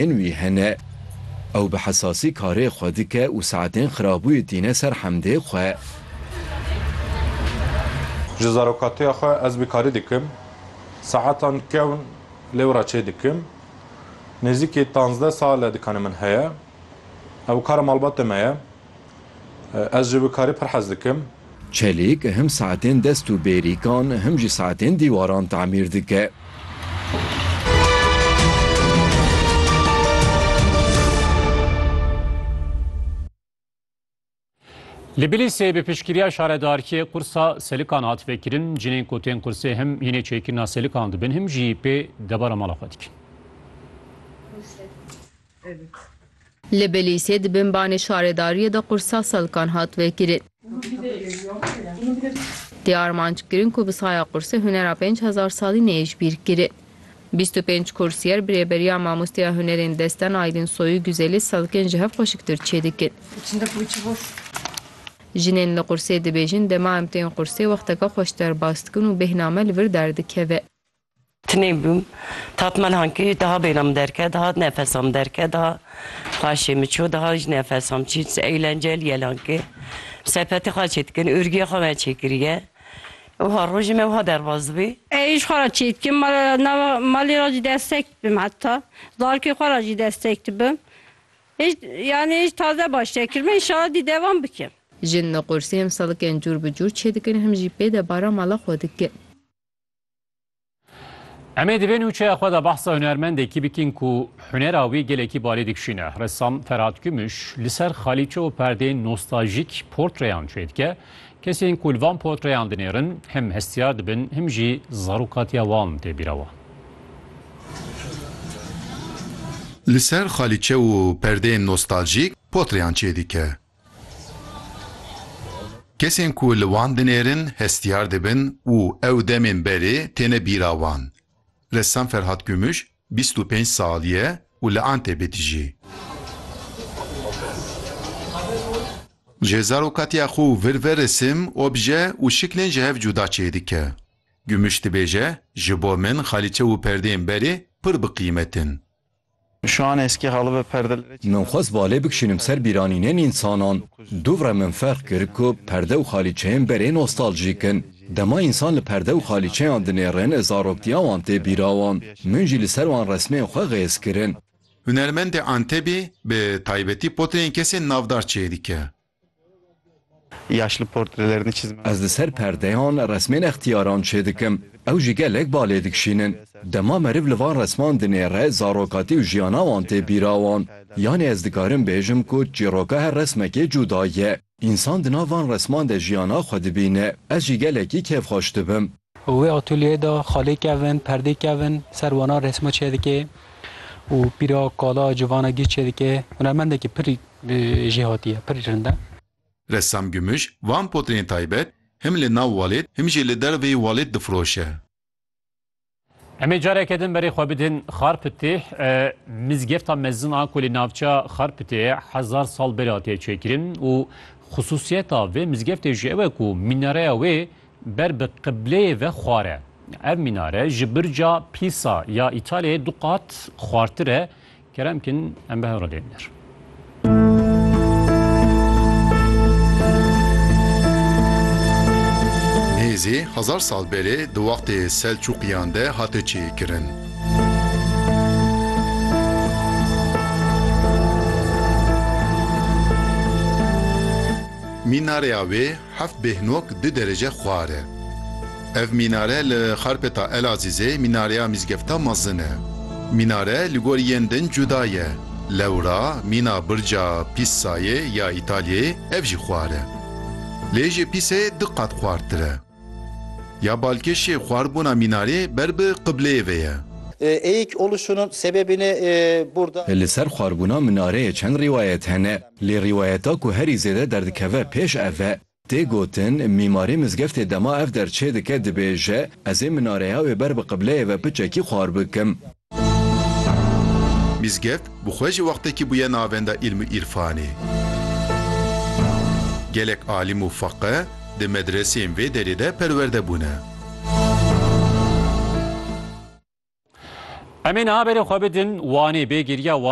Hin wî hene. Ew bi hesasî karê xwe dike û saetên xirabûyê tîne ser hemdê xwe. Ji zarokatiya xwe ez bi karî dikim. Saetan kewn lêw re çê dikim. Nêzîkî tanzdeh sal e dikane min heye. Ew kara malbatê me ye. Ez ji wikarî pir hez dikim. Çelîk him saetên dest û bêrîkan him jî saetên dîwaran tamîr dike. Li Bilîsê bi piştgiriya şaredarkê qursa selikan hat vekirin. Cinên ku tên qursê him hînê çêkirina selikan dibin him jî pê debara mala xwe dikin. Li Bilîsê di bin banê şaredariyê de qursa selkan hat vekirin. Tê armanc kirin ku bi saya qursê hunera pênc hezar salî neyê ji bîr kirin. Bîst û pênc kursiyer bi rêberiya Mamosteya Hunerên Desten Aydin Soyû Güzelî selkên ji hev xweşiktir çêdikin. Jinên li qursê dibêjin dema em tên qursê wexteke xweş derbas dikin û bêhna me li vir derdikeve. Tinêbûm. Tatmel hankî daha bêhna min derket, daha nefesa min derket, daha xaşê min çû, daha jî nefesa min çî. Eğlencel yel hankî. Sepetê xwe çê dikin, ûrgiyê xwe me çê kiriye. Wiha rojê me wiha derbas dibî. Êrîş xwe re çê dikim, ma nava malê re jî destek dibim heta. Zarokê xwe re jî destek dibim. Hêj yanî hêj taze baş nekirime, înşala dî devam bikim. Jin li qursê em selikên cûr bi cûr çê dikin, him jî pê debara mala xwe dikin. Em ê di vê nûçeya xwe de behsa hunermendekî bikin ku hunera wî gelekî balê dikişîne. Ressam Ferhat Kumuş li ser xalîçe û perdeyên nostaljîk portreyan çê dike. Kesên ku li van portreyan dinêrin him hestiyar dibin him jî zarokatiya wan tê bîra wan. Li ser xalîçe û perdeyên nostaljîk portreyan çê dike. Kesên ku li wan dinêrin hestiyar dibin û ew demên berê têne bîra wan. Ressam Ferhat Gümüş bîst û pênc salî ye û li Antebê dijî. Ji zarokatiya xwe û vir ve resim, obje û şiklên ji hev cuda çêdike. Gümüş dibêje, Ji bo min xalîçe û perdeyên berê pir bi qîmet in. Min xwest balê bikişînim ser bîranînên însanan. Dûvre min ferq kir ku perde û xalîçeyên berê nostaljîk in. Dema însan li perde û xalîçeyan dinêrin zaroktiya wan tê bîra wan. Min jî li ser wan resmên xwe xêz kirin. Hunermendê Antebî bi taybetî potreyên kesên navdar çêdike. Ez li ser perdeyan resmên extiyaran çêdikim, ew jî gelek ba lê dikişînin. Dema meriv li van resman dinêre zarokatî û jiyana wan tê bîra wan. Yanî ez dikarim bêjim ku çîroka her resmekê cuda ye. Însan di nav van resman de jiyana xwe dibîne. Ez jî gelekî kêfxweş dibim. Û wê atolyeyê de xalê kevin, perdê kevin, ser wana resma çêdike û pîra kala civana gîr çêdike. Hunermendekî pir jêhatî ye, pir rind e. Ressam Gümüş, van potreyên taybet him li nav walêt him jî li derveyî walêt difiroşe. Em ê careke din berê xwe bidin Xarpitê. Mizgefta mezin a ku li navçeya Xarpitê ye hezar sal berê hatiye çêkirin û xisûsiyeta vê mizgeftê jî ew e ku mînareya wê Ber bi qibleyê ve xwar e. Ev mînare ji birca Pîsa ya Îtalyayê du qat xwartir e. Kerem bikin em bi hev re dêrîn der. Nêzî hezar sal berê di wextê Selçûqiyan de hate çêkirin. Mînareya wê Heft bêhnok du derece xwar e. Ev mînare li Xarpêta Elazîzê mînareya mîzgefta mezin e. Mînare li gor yên din cuda ye. Lewra mîna birca Pîssayê ya Îtalyayê ev jî xwar e. Lê ji Pîssayê du qat xwartir e. Ya balkêşê xwarbûna mînarê ber bi qibleyê ve ye. Eik oluşunun sebebini burada. Li ser xwarbûna minareyê çend rîwayet hene. Lê rîwayeta ku herî zêde derdikeve pêş ev e. Tê gotin, mîmarê mizgeftê dema ev der çêdike dibêje, Ez ê minareya wê ber bi qibleyê ve piçekî xwar bikim. Mizgeft bi xwe jî wextekî bûye navenda îlm û îrfanê. Gelek alîm û feqih di medreseyên vê derê de perwerde bûne. Em ê niha berê xwe bidin Wanê, bê giriya Wanê.